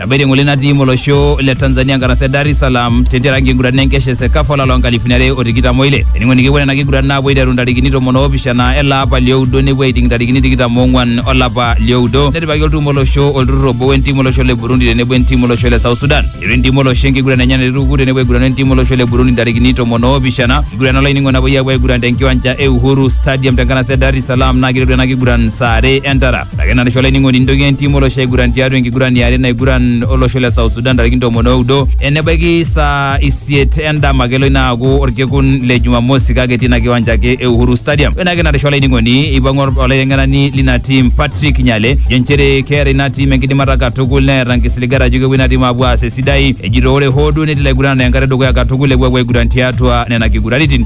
Tabiri ngole natii molosho le Tanzania ngarasa Dar es Salaam tentiaraki enkiguran enkesha e Sekafa olapa loonkalifuni are o tikitam oile. Eningo nikipuo nena kiguran naapuo aiteru ntarikini tomon oopishana ele apa lioudo nepuo aiting ntarikini tikitam oong'wan olapa lioudo. Netipikaki olturrur olosho olturrur obo wentim olosho le Burundi tenebo entim olosho le South Sudan. Eiteru entim olosho enkiguran enye naituku tenebo aigurana entim olosho le Burundi ntarikini tomon oopishana. Enkiguran olainingo napuoi aapuo aiguran tenkiwanja e Uhuru Stadium tenkanasa e Dar es Salaam naa keiteru ena kiguran saa are entara. Ake narisho olainining'oni nintoki entim olosho aiguran tiatua enkiguran yare naiguran olosho le South Sudan ntarikini tomon oudo enebaiki saa isiet endama kelo ina aaku orkekun le Jumamosi kake etii ina kiwanja ake e Uhuru Stadium. Ore ake narisho olainining'oni eipang'u olaiteng'enani lina tim Patrick Nyale jo nchere keeta ina tim enkidimata katukul neeta nkisiligat ajo kepuo ina tim aapuo aas esidai ejito ore hoo duo netii ilaiguranani enkata edukuya katukul epuo aapuo aiguran tiatua nena kiguraritin.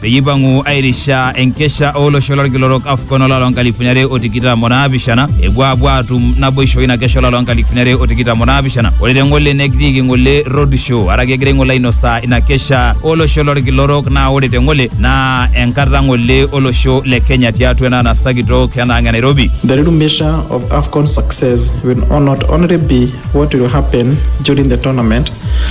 peyie eipang'u airisha enkesha olosho lolkilorok AFCON olari loo nkalifuni are o tikitam o naapishana epuo aapuo aatum naboisho ina kesha olari loo nkalifuni are o tikitam o naapishana ore te ng'ole nekitiiki ng'ole roadshow araki egira ng'ole ainosaa ina kesha olosho lolkilorok naa ore te ng'ole naa enkata ng'ole olosho le Kenya tiatua ena anasa kitok ena ang' e Nairobi. The real measure of AFCON success will not only be what will happen during the tournament,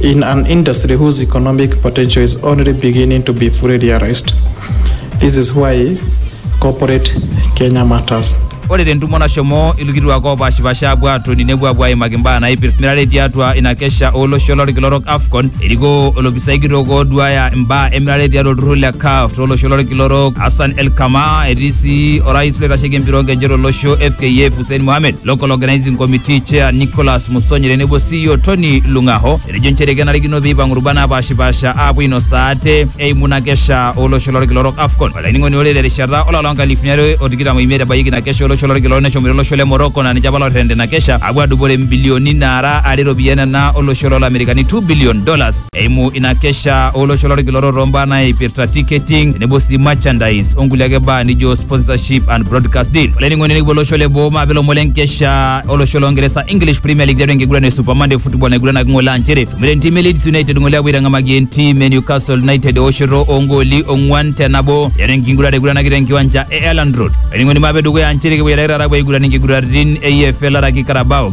In an industry whose economic potential is only beginning to be fully realized, this is why corporate Kenya matters. Ore tentumo nashomo ilkituak oopaashipaasha apuo aatoni nepuo apuo aimaki mbaa naipirta emirare tiatua ina kesha olosho lolkila orok AFCON erikoo olopisai kitok ooduaya mbaa emirare tiatua olturrur le CAF tolosho lolkila orok Hassan El Kamaa etii sii orais loitasheki empira oonkejek tolosho FKF Hussein Mohamed, Local Organising Committee Chair Nicholas Musonye tenebo sii Elio Tony Lung'aho etejo nchere kenarikino pee eipang'u rubat naapaashipaasha aapuo ainosaa ate eimu ina kesha olosho lolkila orok AFCON. Olainining'oni ore terishata olapa loonkalifuni are o tikitam oimiet ebayieki ina kesha olosho lolkila orok neshomoita olosho le Morocco naa ninche apa looterrena ina kesha aapuo aadupore mbilioni naara are iropiyiani nena olosho loolamerikani two billion dollars. eimu ina kesha olosho lolkiloro too mbaa naipirta ticketing tenebo sii merchandise onkulie ake baa nijo sponsorship and broadcast deals olainining'oni nikipuo olosho le boo maape lomon lenkesha olosho longeresa english premier league tiatua enkiguran e super monday football naiguranaki ng'ole aa nchere tumore entim e leeds united ng'ole apuo aitang'amaki entim e newcastle united eoshoto oongooli ong'uan te nabo tiatua enkiguran naiguranaki tenkiwanja e elland road olainining'oni maape dukuya aa nchere kipuo aitake taata apuo aiguran inkiguraritin e EFL araki carabao